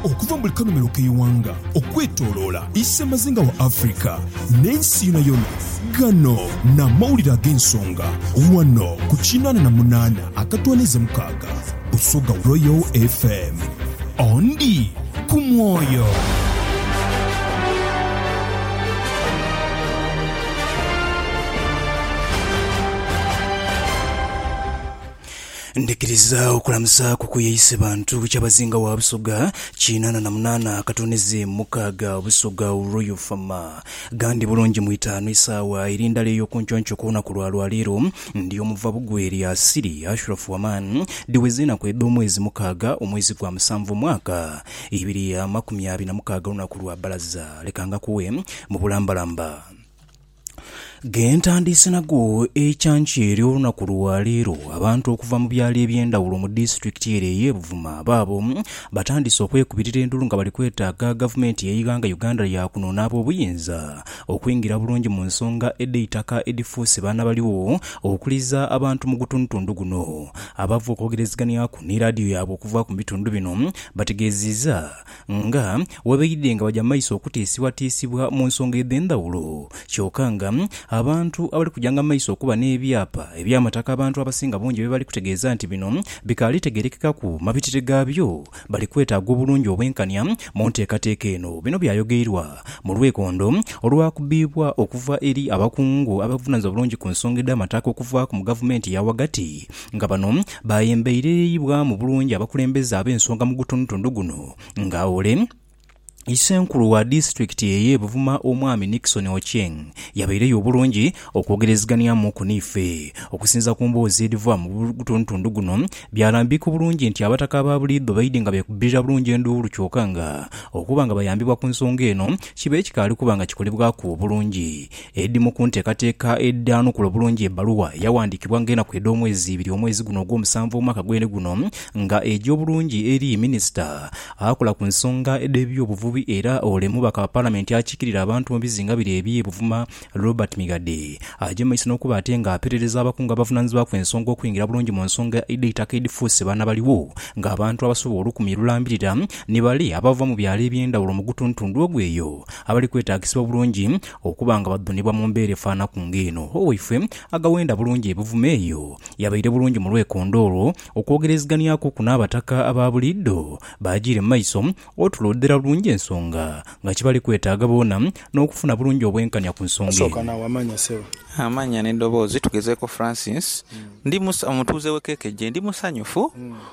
Okuva mu buli kanhumilo k'eighanga okwetoloola isemazinga wa Africa n'ensi yonayona, ghano n'amawulire ag'ensonga ghano ku kinaana na munaana akatwaniiza mukaaga Busoga Royal FM. Ondi ku mwoyo. Ndhikiriza okulamuzaaku ku ye ise bantu Kyabazinga wa Busoga kinaana na munaana akatunizi mukaaga Busoga Royal Fama. Ghandi bulungi mu itaanu isaawa eri ndala ey'okunconco ku lunaku lwa lwaleero ndi omuva bugwe eri Asili Ashraf Waman dhiweze enaku edh'omwezi mukaaga omwezi gwa musanvu omwaka ibiri amakumi abiri na mukaaga olunaku lwa bbalaza leka ngakuwe mu bulambalamba. Ghentandiise nago ekyankya eri olunaku lwa leero, abantu okuva mu byalo ebyendawulo mu disitulikiti ere eye Buvuma baabo batandise okwekubirira endulu nga bali kwetaaga gavumenti yeighanga Uganda yakuno n'abobuyinza okwingira bulungi mu nsonga edheitaka edhifuuse baanabaligho okuliza abantu mu gutundutundu guno. Abava okwogereziganyaku ni laadiyo yaabwe okuva mu bitundu bino bategeziiza Nga bwe baidhe nga baja mu maiso okutiisibwatiisibwa mu nsonga edh'endhawulo, kyoka nga abantu abali kujanga mu maiso okuba n'ebyapa eby'amataka abantu abasinga bungi bye bali kutegeeza nti bino bikaali tegerekekaku mabitire gaabyo, bali kwetaaga obulungi obwenkania mu nteekateeka eno. Bino byayogeirwa mu lwekondo olwakubibwa okuva eri abakungu abevunaanyizibwa bulungi ku nsonga edh'amataka okuvaaku mu gavumenti eya ghagati, nga bano baayembeirereyibwamu bulungi abakulembeze ab'ensonga mu gutundutundu guno nga ole Isenkulu wa disitulikiti eye Buvuma Omwami Nickson Ochieng yabaireyo obulungi okwogereziganiamuku n'ife. Okusinza ku mboozi edhiva mu gutundutundu guno byalambika obulungi nti abataka aba buliidho baidhi nga beekubbirira bulungi enduulu kyoka nga okuba nga bayambibwa ku nsonga eno kiba ekikaali kuba nga kikolebwaku obulungi Edhimu ku nteekateeka edhaanukula obulungi ebbaluwa eyawandiikibwa ng'enaku edh'omwezi ibiri omwezi guno ogw'omusanvu omwaka gwene guno nga egya obulungi eri Minisita akola ku nsonga dh'ebyobuvubi era ole mubaka wa Palamenti akiikirira abantu mu bizinga bire eby'e Buvuma Robert Migadde agya mu maiso n'okuba ate ng'aperereza abakungu abavunaanyizibwaku ensonga okwingira bulungi mu nsonga dh'eitaka edhifuuse banabaliwo ng'abantu abasobola olukumi lulambirira ni bale abava mu byalo eby'endhawulo mu gutuntundu ogwo eyo abali kwetaagisibwa bulungi Okuba nga badhunibwa mu mbeera efaanaku ng'eno, owaifwe agawenda bulungi ebivumo eyo, yabaire bulungi mu lwekondo olwo okwogereziganiakuku n'Abataka aba buliidho baajiire mu maiso otuloodhera bulungi ensonga nga kibali kwetaaga boona n'okufuna bulungi obwenkanya ku nsonga Sooka eno. naawe amannya ssebo. Amannya n'edoboozi. Tugezeeko Francis. Ndi musa, omutuuze w'e Kekeje. Ndi musanyufu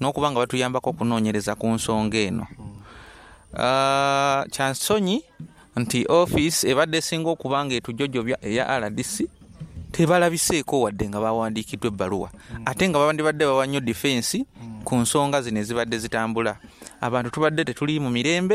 N'okuba nga batuyambaku okunoonyereza ku nsonga eno, kya nsonyi nti ofiisi ebadde esinga okuba nga etujojobya eya rdc tebalabiseeko wadde nga baawandiikiddwa ebbaluwa ate nga bandibadde bawa nnyo difensi ku nsonga zino ezibadde zitambula. Abantu tubadde tetuliimu mirembe.